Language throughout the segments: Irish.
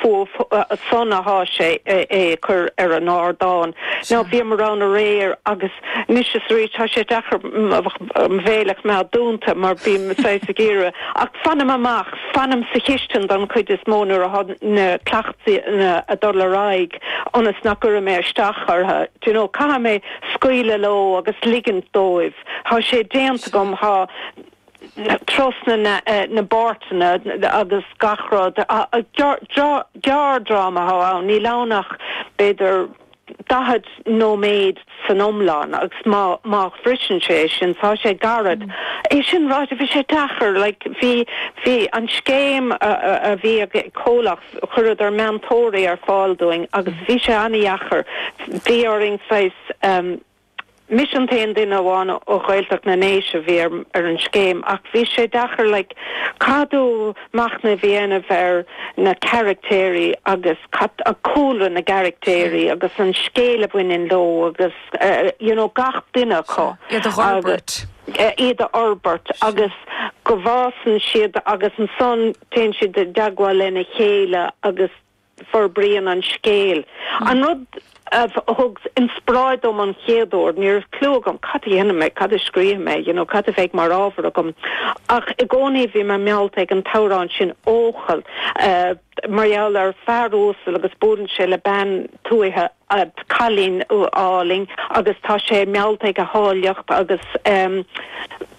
fuath san atá sé á chur ar an ardán. Now, bhíomar ann aréir agus anois is arís tá sé deacair mo bhéal a choimeád dúnta mar bím saghas ag iarraidh ach fanaim amach, fanaim sa chistin don chuid is mó nuair atá na cleachtanna ag dul ar aghaidh ionas nach gcuirfidh mé isteach orthu. Do you know, caithfidh mé scaoileadh leo agus ligint dóibh. Tá sé déanta agam, tá. trasna na bpáirteanna agus gach rud. Gearrdhráma atá ann, níl ann ach b'fhéidir daichead nóiméad san iomlán agus má shroiseann sé é sin, tá sé gairid. É sin ráite, bhí sé deacair, like, bhí an scéim a bhí ag comhlacht, chuireadar meantóirí ar fáil dúinn agus bhí sé an-dheacair, bhí orainn saghas, Mise an t-aon duine amháin ó Ghaeltacht na nDéise a bhí ar an scéim ach bhí sé deacair like casadh machnamh a dhéanamh ar na caraictéirí agus cad é cúlra na gcaraictéirí agus an scéal a bhaineann leo agus you know gach duine acu agus iad a fhorbairt agus go bhfásann siad agus ansan téann siad i dteagmháil lena chéile agus forbraíonn an scéal. An rud a thug inspioráid dom an chéad uair, ní raibh cliú agam cad a dhéanfaidh mé, cad a scríobhfaidh mé, you know cad a bheidh mar ábhar agam, ach i gcónaí bhí mé meallta ag an t-amhrán sin 'Eochaill' mar gheall ar fear uasal agus buaileann sé le bean tuaithe, cailín álainn agus tá sé meallta ag a háilleacht agus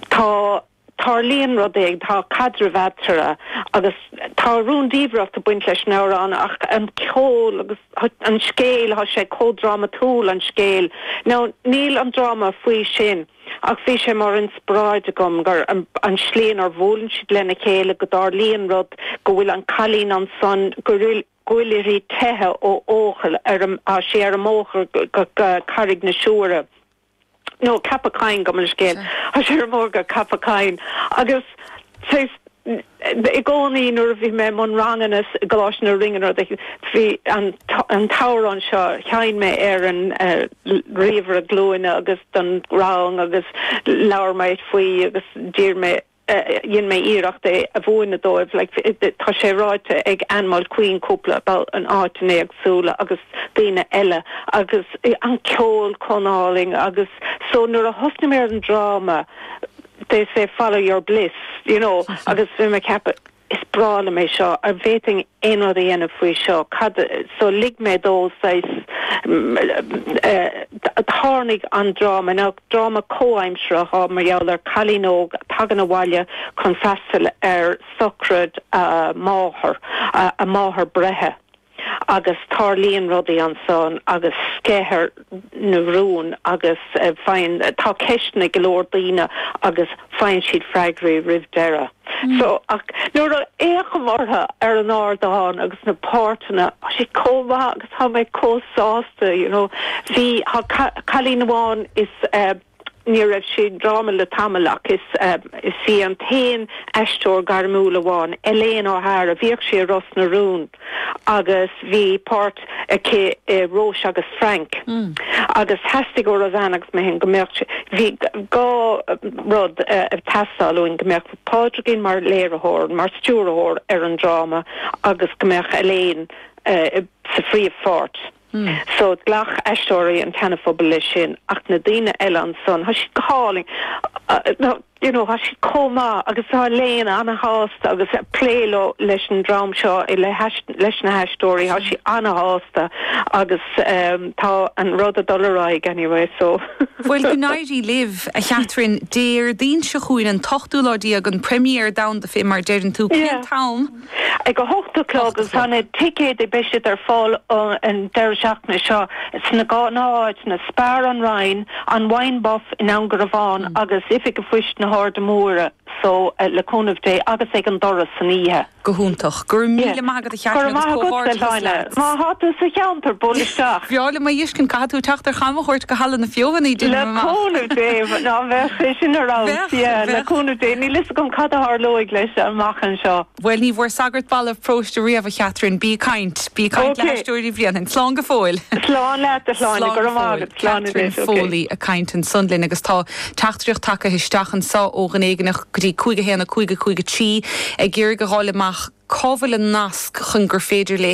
tá. tarlaíonn rudaí, tá caidreamh eatarthu agus tá rúndiamhracht ag baint leis an amhrán ach an ceol agus an scéal, tá sé chomh drámatúil, an scéal. Now, níl an dráma faoi sin ach bhí sé mar inspioráid agam gur, an slí inar bhuaileann siad lena chéile, go dtarlaíonn rud, go bhfuil an cailín ansan, go bhfuil uirthi teicheadh ó Eochaill, ar an, tá sí ar an mbóthar go Carraig na Siúire. nó Ceapach Choinn, gabh mo leithscéal. Tá sí ar an mbóthar go Ceapach Choinn. Agus saghas i gcónaí nuair a bhí mé i mbun ranganna i gColáiste na Rinne nó de, bhí an an t-amhrán seo, sheinn mé ar an ríomhaire glúine agus don rang agus labhair mé faoi agus d'iarr mé dhein mé iarracht é a mhúineadh dóibh like tá sé ráite ag Anne Mulqueen cúpla babhta in áiteanna éagsúla agus daoine eile agus an ceol chomh álainn agus so nuair a thosnaigh mé ar an dráma they say follow your bliss you know agus bhí mé ag ceapadh is breá liom é seo, a' bhféadfainn aon rud a dhéanamh faoi seo, cad, so lig mé dó, saghas, tharlaigh an dráma, nó dráma comhaimsireach á, mar gheall ar cailín óg a tagann abhaile chun freastal ar sochraid a máthar, a máthair breithe. agus tarlaíonn rudaí ansan agus sceithear na rún agus faigheann, tá ceisteanna ag go leor daoine agus faigheann siad freagraí roimh deireadh. So, ach nuair a fhéachaim orthu ar an ardán agus na páirteanna, tá siad chomh maith agus tá mé chomh sásta, you know. Bhí, tá cailín amháin is eh, Ní raibh sí i ndráma le tamall ach is í an t-aon aisteoir gairmiúil amháin, Elaine O'Hara, bhíodh sí i Ros na Rún agus bhí páirt aici i Róis agus Frank agus theastaigh ó Roseanne agus mé féin go mbeadh, bhí dhá rud ag teastáil uainn, go mbeadh Pádraigín mar léiritheoir, mar stiúrthóir ar an dráma agus go mbeadh Elaine sa phríomhpháirt. So, ghlac aisteoirí an tSeanaphobail leis sin ach na daoine eile ansan, tá siad go hálainn, you know, tá siad chomh maith agus tá Elaine ana-shásta ag plé leo, leis an dream seo, leis na haisteoirí, tá sí ana-shásta agus tá an rud ag dul ar aghaidh anyway, so. Bhuel, go n-éirí libh, a Chatherine. Déardaoin seo chugainn, an t-ochtú lá déag, an première domhanda fé mar a deireann tú. Cén t-am? Ag a hocht a chlog agus tá na. ticéid, beidh siad ar fáil an deireadh seachtaine seo sna gnáth-áiteanna, Spar, An Rinn, An Wine Buff i nDún Garbhán agus Oifig Phoist na hAirde Móire, só le cúnamh Dé, agus ag an doras san oíche. Go hiontach. Go raibh míle maith agat a Chatherine. Go raibh maith agat. Má thá tú sa cheantar, buail isteach. Ba bhreá liom é a fheiscint, caithfidh tú teacht ar chamchuairt go Halla na Feothanaí, le cúnamh Dé. Yeah, le cúnamh Dé. Níl fhios agam cad a tharlóidh leis amach anseo. Bhuel, ní bhfuair sagart balbh paróiste riamh, a Chatherine. Bí ag caint. Bí ag caint le hAisteoirí Bhréanainn. Slán go fóill. Slán leat, slán. Go raibh maith agat. Slán anois. Catherine Foley ag caint ansan linn agus tá teachtaireacht tagtha isteach anso ó dhuine éigin go dtí 511553 ag iarraidh a dh'fháil amach cá bhfuil an nasc chun gur féidir léi